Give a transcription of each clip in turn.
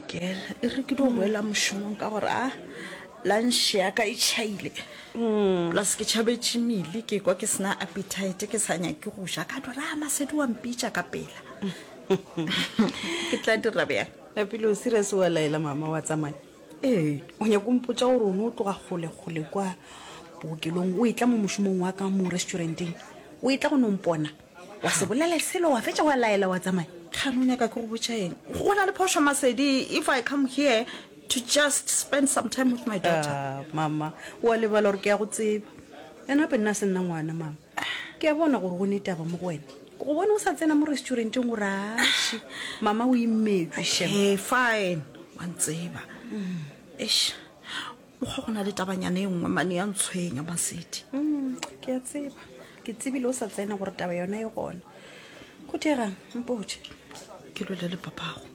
Girl, e re ke dio boela mošomong ka gore a lunch ya ka e chaile. Mm. Plus ke chabetše mele ke kwa ke sena appetite ke sa nyake go ja ka dora a masedi wa mpitša ka pela. Ke tla dira bjang? Lapile o serious wa laela mama wa tsamaya? Ee. O nyako mpotša gore o ne o tloga kgole kgole kwa bookelong o e tla mo mošomong wa ka mo restauranteng o e tla go no mpona? wa se bolele selo wa fetša wa laela wa tsamaya kgane o nyaka ke go botša eng go na le phošo masedi if i come here to just spend some time with my daughter ah, mama wa lebala gore ke ya go tseba ena gape nna se nna ngwana mama ke ya bona gore go ne taba mo go wena go bone o sa tsena mo restauranteng gore aši mama o imetswe shem fine wa ntseba mm. ish o kgwa go na le tabanyana e nngwe mane ya ntshwenya masedi mm, ke a tseba ke tsebile o sa tsena gore taba yona e gona go thegang mpoje ke lwele le papago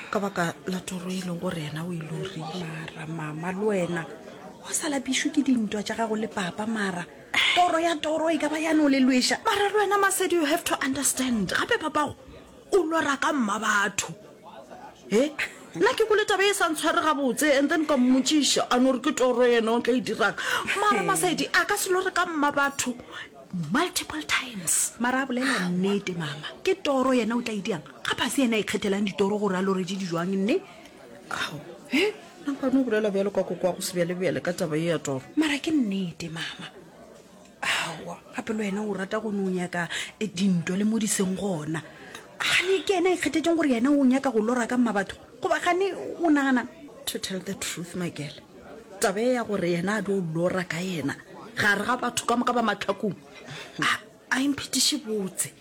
ka baka la toro e leng gore yena o e lorile mara mama le wena o sa lapišwe ke dintwa tša gago le papa mara toro ya toro e ka ba yane o le lweša mara le wena masedi you have to understand gape papago O lora ka mmabatho. He? Nna ke kole taba e sa ntshware gabotse and then ka mmotšiša a no re ke toro yena o tla e dirang. Mara Masaedi a ka se lore ka mmabatho multiple times. Mara a bolela nnete mama. Ke toro yena o tla e dirang. Ga ba se yena a ikgethelang ditoro gore a loreje di jwang nne. Ao. He? Nna nka no bolela bjalo ka koko wa go sebjalebjale ka taba e ya toro. Mara ke nnete mama. awa gape le wena o rata go ne o nyaka eh, dintwa le mo di seng gona gane ke ena a ikgethetseng gore yena o nyaka go lora ka mma batho goba gane o nagana to tell the truth makele taba e ya gore yena a tlo lora ka yena gare ga batho ka moka ba matlhakong a a imphetiše botse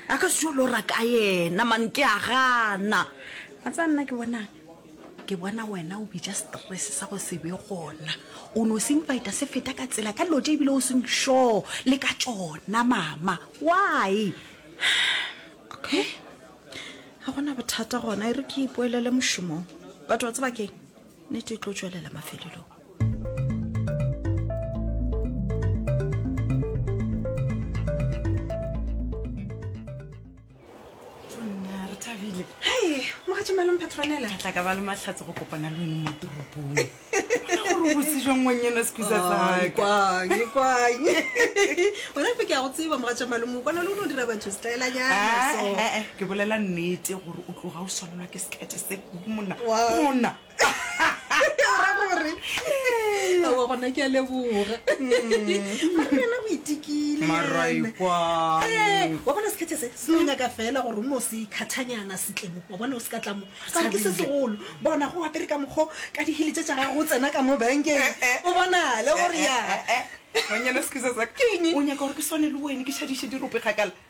A ka se tšo lora ka yena man ke a gana. Wa tsa nna ke bonang? Ke bona wena o bitša stress sa go se be gona. O no se invita se feta ka tsela ka dilo tše ebile o seng sure le ka tšona mama. Why? Okay. Ga gona bothata gona e re ke ipoelele mošomong. But wa tseba keng? Nete e tlo tšwelela mafelelong. tla ka ba le matlhatse go kopana le one mo toropong gore botse jang wang ena sekhusa tsakaekwanye ona fe ke ya go tseba moga tša malemo kwana le o ne o dira batho setlaelanyana ke bolela nnete gore o tloga o swanelwa ke sekete se mona ona ra gore aowa gona ke a leboga mara yena go itikile Maraikwa. Eh, wa bona sekhethe se se no nyaka fela gore o no se khathanyana setlemo wa bona o se ka tlamo kare ke se segolo bona go apere ka mokgo ka dihili tse tša gago o tsena ka mo bankeng o bonale gore ya Manyana, excuse us. Ke eng? o nyaka gore ke swane le wene ke šadiše dirope kgakala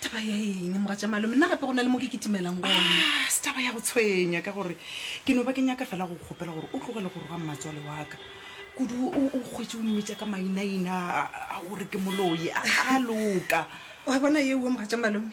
taba ya eng moga tša malome nna gape go na le mo ke kitimelang gone Ah, se taba ya go tshwenya ka gore ke no ba ke nyaka fela go kgopela gore o tlogele go roga mmatswale wa ka kudu o o kgwetse o mmitsa ka mainaina a- a gore ke moloi a a loka wa bona ye uwe moga tša malome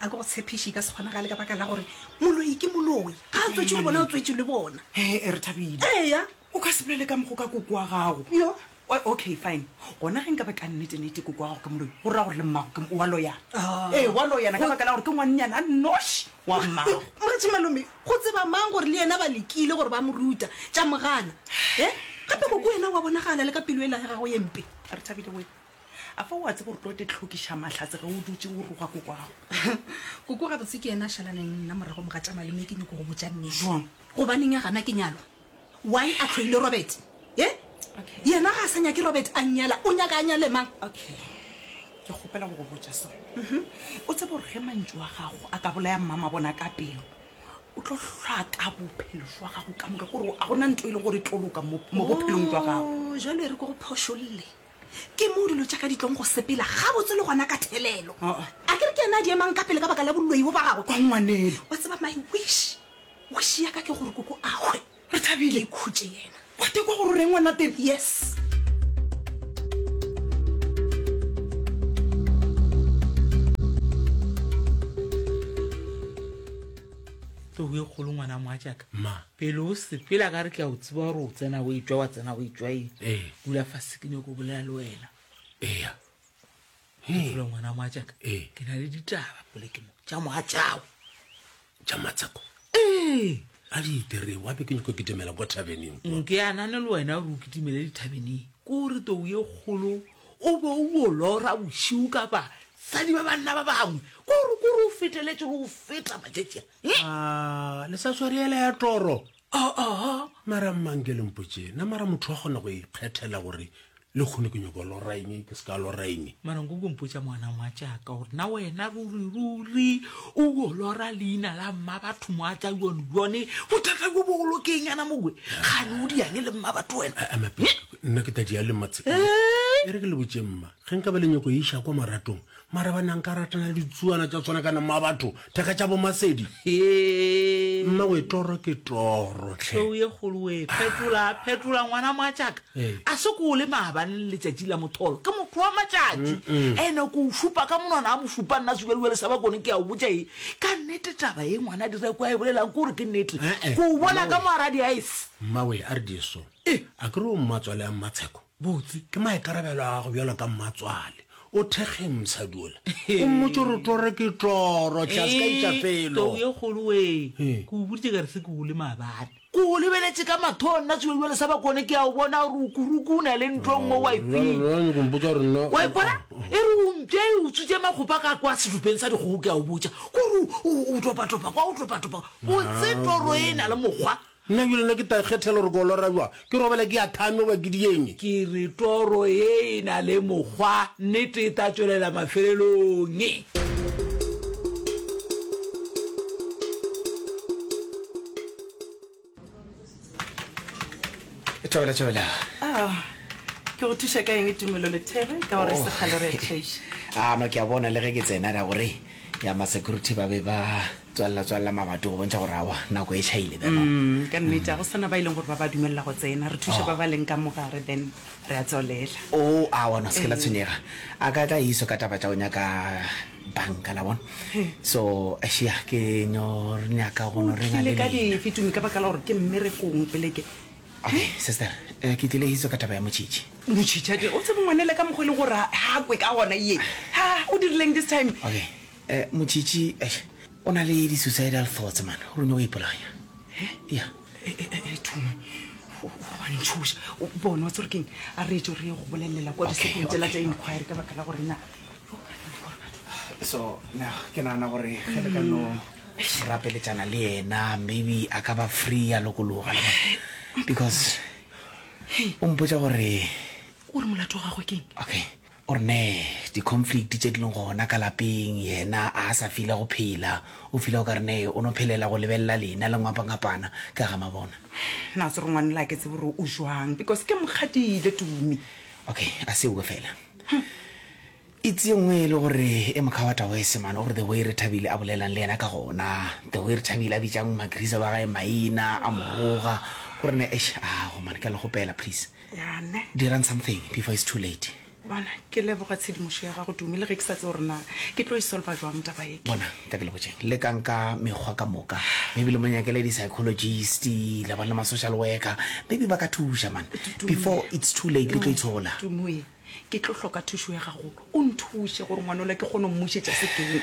a ke go tshepiše e ka se kgonagale ka baka la gore moloi ke moloi ga a tswetše le bona o tswetše le bona Eh, eh, re thabile eya O ka se bolele ka mokgo ka koko wa gago. Yo. O, okay, fine. Gona ge nka ba ka nnete-nnete koko wa gago ke moloi, go ra gore le mmago ke, wa loyana. Ah. Ee, wa loyana ka baka la gore ke ngwannyana a nnoši wa mmago. Moretši malome, go tseba mang gore le yena ba lekile gore ba mo ruta, tša mo gana? He? Gape koko wena wa bonagala le ka pelo ela ya gago ye mpe. A re Thabile wena, a fa o a tseba gore tlo te tlhokiša mahlatse ge o dutše o roga koko wa gago? Koko gabotse ke yena a šalaneng le nna morago mo ga tša malome, ke nyoko go botša nnete. Bjang? Gobaneng a gana ke nyalwa? Why a tloile Robert? Ye? Okay. Yena ga a sa nyake Robert a nyala, o nyaka a nyale mang? Okay. Ke kgopela go go botša so. Mhm. O tsebe gore ge mantšu wa gago a ka bolaya mmama bona ka pelo, o tlo hlaka bophelo jwa gago ka moka gore a gona nto e le gore e tlo loka mo mo bophelong jwa gago Oh, jalo e re ko go phošolle ke moo dilo tša ka di tlong go sepela gabotse le gona ka thelelo Oh, oh. a ke re ke ena a di emang ka pele ka baka la boloi bo ba gagwe kwa ngwanelo wa tseba my wish Wish ya ka ke gore koko a hwe. Re thabile khutše yena. Wa tekwa gore o reng ngwana teng. Yes. tlogo e kgolo ngwana moa jaaka Ma. pele o sepela ka re ke a o tseba gore o tsena o etswa wa tsena o etswa e Ee. dula fa sekine ko bolela le wena eya Fula ngwana moatšaka Ee. ke na le ditaba pole ke mo tša moatšao tša matsako ee a di itere wa be ke nyako ke demela kwa tabeneng kwa nke anane le wena gore o kitimele dithabeneng ke gore tou ye kgolo o be o bo lora bošiu ka basadi ba banna ba bangwe ke gore kore o feteletse le go feta matšatšia Ah, le sa tshware yela ya toro Aa, mara mmang ke lempotše na mara motho wa kgona go ikgethela gore le kgone ke nyoko lora eng ke se ka lora eng mara nko kompotša ngwana ngwa tšaka gore na wena ruri ruri o o lora leina la mma batho mo atla yone yone bothata jo bogolo ke eng yana mogwe gane o diyange le mma batho wena nna ke tadi ya le matse e re ke le botše mma ge nka ba le nyoko e iša kwa maratong Marabana nka rata na le ditsuana tša tswana kana mma batho theka tša bomasedi Hee. mmawe toro ke toro tlhe Tlou ye kgolo we phetola phetola ngwana moatšaka Ee. a se ko o le maabane le letšatši la motholo ke motho wa matšatši ene ko o šupa ka monwana a mo šupa nna sukaliwa le saba kone ke a o botša e ka nnete taba ye ngwana dira ko a e bolelang ke gore ke nnete Eh, eh, ko o bona ka mmawe. moaradi a ese mmawe a re diso Eh. a ke re o mmatswale a mmatsheko Botse, ke maikarabelo a gago bjalo ka mmatswale. O thekgeng mosadi ola? O mmotše gore toro ke toro, tlas ka itšapelo. Tou ye kgolo wee, ke o boditše ka re se ke gole maabane. Ke go lebeletše ka mathong nna tsoe bjale sa bakone ke a o bona gore o kuruku o na le ntlong mo wa iping. Wa ipona? E re o mpše e utswitše makgopa ka kwa sedupeng sa dikgogo ke a o botša. Ke gore o topatopa kwa o topatopa kwa. Botse toro e na le mokgwa. Nna bjale nna ke ta ikgethela gore ke o lora bjang. Ke robale ke a thame goba ke di eng? Ke re toro ye e na le mokgwa, nnete e tla tšwelela mafelelong. Thabela, Thabela. Ah, ke go thuša ka eng Tumelo le There ka gore e se kgale re a tšheiša? Ano ke a bona le ge ke tsena ra gore ya ma security ba be ba Tswalela, tswalela magatu go bontšha gore awa, nako e tšhaile. Bjalo. Mm, ka nnete, ga go sana ba e leng gore ba ba dumelela go tsena. Re thuše ba ba leng ka mo gare, then re a tswalela. O, awa, no, se ke la tshwenyega. A ka tla iso ka taba tša go nyaka banka, la bona. So, šia, ke no re nyaka go no O re na tlile le ka leina. dife, Tumi, ka baka la gore ke mmerekong pele ke... Okay, sister, eh, ke tlile iso ka taba ya motšhitšhi. Motšhitšhi a tle, o tsebe ngwanele ka mokgwa e leng gore ha- ha kwe ka gona, ye. Ha, o dirileng this time? Okay. Eh, Motšitši, eish, o na le di-suicidal thoughts, man, o rone o ipolaya. Eh? Ya. Eh, eh, eh, eh Thume, o- o a ntšhoša. O bone wa tsore keng a re etso re ye go bolelelela kwa disekong tsela tsa inquiry ka baka la gore na So, na, ke nagana gore ge le ka no rapeletšana le yena, maybe a ka ba free a lokologa. le bona. Because o mpotša gore, o re molato wa gagwe keng okay, O re nee, di conflict tše di leng gona ka lapeng, yena a sa fila go phela, o fila o ka re nee o no phelela go lebelela lena le ngwapangapana ka ga mabona. Na se re ngwanela a ke tsebe gore o jwang because ke mokgadile Tumi. Okay, a se uwe fela. It's ye nngwe e le gore e mokha wa Tawese man, o re the way re Thabile a bolelang le yena ka gona, the way re Thabile a bitšang Magriza wa gae maina a mo roga, o re nee eish aa go man ke a le kgopela please. yane dirang something before it's too late bona ke leboga tshedimošo ya gago dume le ge ke sa tse gore na ke tlo e solva jwang taba e bona ka ke lebotšeng le kang ka mekgwa ka moka maybe le monyakele di-psychologist la bana le ma-social worker maybe ba ka thuša man before it's too late le tlo itshola tumoe ke tlo hloka thušo ya gagolo o nthuše gore ngwanola ke kgone go mmušetša sekeng